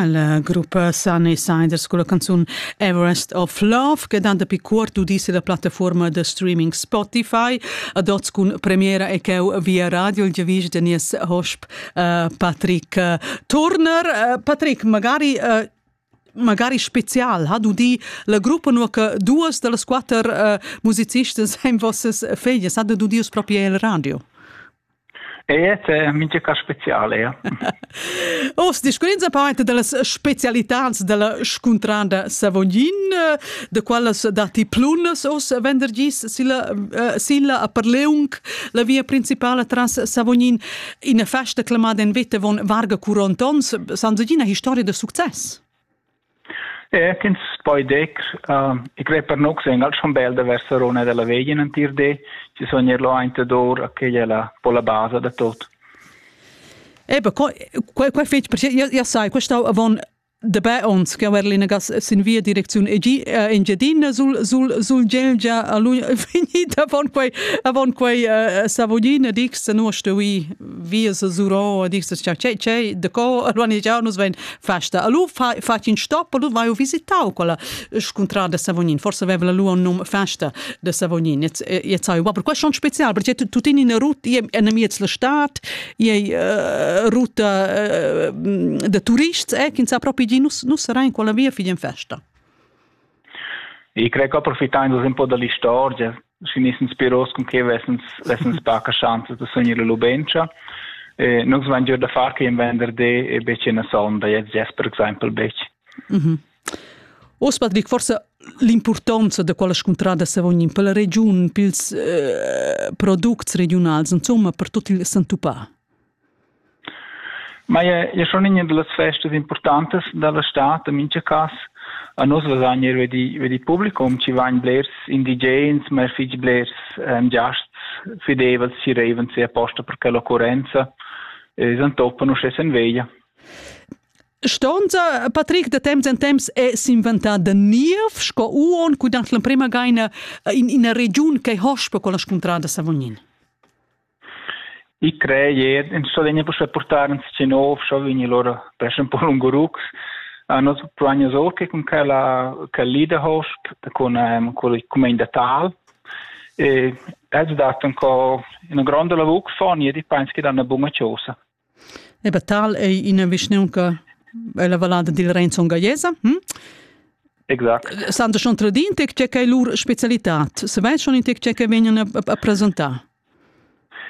La gruppa Sunny Sinders con la canzun Everest of Love che dan dapi cuort udis la plattaforma da streaming Spotify ad oz cun premiera e cheu via radio il giavisch da nies hosp uh, Patrick uh, Turner. Uh, Patrick, magari uh, magari spezial ha udì la gruppa nur che duas da las quatter uh, musicistas ein vossas feglias, ha udì proprio il radio. Ea, è mincha cas special, ea. Oz discurrins a part dallas specialitads dalla scuntrada Savognin, da quellas datti plunas oz venderdis silla, uh, silla a Perleung, la via principala tras Savognin, ina festa clamada en vita von Varga Curontons, san segina historia da success? ch'ins poi dir e crer per nus en al schon bel da ver Sarona dalla veglia in entir di, chi sun eir là aint ed our, quella è la po la basa da tot. Ebe, quai quai fetg perché io io sai, questa avon da bè ons che aver l'inagas sin via direcziun EG Engiadina sul sul sul Gelgia a lui finita avon quei avon quei Savogina dix no stuvi vi se zuro a dir cha c'è c'è de co organizzar nus vein festa a lu fa fa in stop a lu vai visitau quella scontrada de Savognin forse aveva la lu un num festa de Savognin jetzt jetzt sai aber question spezial perché tu tini eine route in der miez la stadt je route de turists eh kin sa proprio di nus nus rein quella via fidien festa Ich crei che approfittain da un po da l'istorgia, schi nis inspiros cun che vessens, vessens paca schanza da sunir la lubentscha. E nus vain gieu da far che in venderdi e betg in sonda, jetzt jes per exempel betg. Mm -hmm. Oz Patrick, forse l'importanza da quella scuntrada se vogn in per la regiun, pils eh, products regiunals, insomma, per tot il Santupà. Maja ei schon iina dallas festas impurtantas dalla stad en mintga cass. A nus vesan eir ve di, ve di publicum chi vain blers indigens, ma er fich blers ehm giasts fideivels chi reivan sia posta per quella occurrenza e ais antoppen uschè sen veglia. Stonza Patrick da temps en temps è s'inventà da niev sco uon cu dant l'emprema gaina in ina regiun che hosp per quella scuntrada Savognin. I crei jed ins sto vegnir puspei purtar ins tgi nov, scho vegnir lur pes un po lungurucs. A nos planius or che cun quella quel leaderhost con ehm, con il comenda tal e es dat un co una gronda lavur che fa ni di pens che danno buona cosa. Eba tal ei ina vischnaunca ella vallada dil Renzon Gaiesa. Hm? Exact. Santa schon tradin tec tge che lur specialitat. Se vei schon in tec tge che vegnan a, a presentar.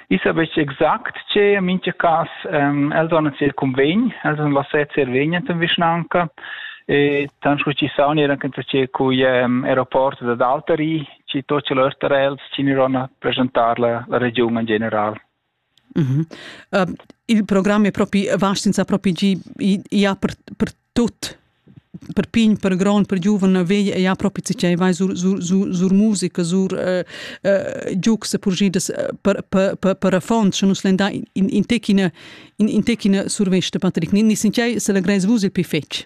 Ich habe gesagt, che in manche cas ähm, els hanno il convegno, els hanno lasciato il vegno in vischnanca e tan scu ci sauni era anche che coi um, aeroporti da Daltari ci to ce l'erterels ci ni rona presentar la, la regione in general. Uh, il program è propi vast senza propi gi, ia per, per tut per pign, per grond, per giuven vegl ja propi cicei vai sur, sur, sur, sur musica, sur uh, uh, giugs purgidas per, per, per, per affons, sche nus lenda in, in, in techina, in, in techina survesta, Patrick, ni, ni sincerei se la greis vus il pi fetg.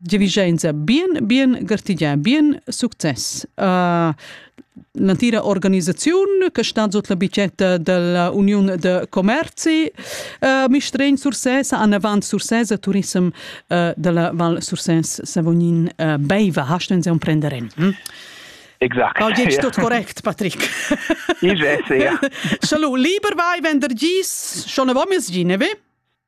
Giavischenza bien, bien gartigià, bien success. Uh, l'entira organisaziun che stat sut la bicetta della Uniun de Commerzi uh, Mistregn Sursès an avant Sursès a Turism uh, della Val Sursès Savognin uh, Beiva. Hast du uns prender in? Hm? Exact. Paul Gitsch, ja. tot korrekt, Patrick. Ich weiß, ja. Salut, lieber vai, wenn der gis, schon a vomis gine, vi?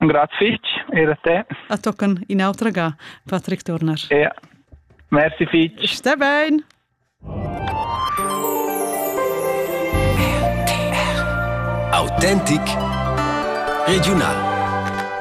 Grazie fitg, er a te. A tocan in'autra ga, Patrick Turner. Ja. Merci fitg. Sta bene. Autentic regional.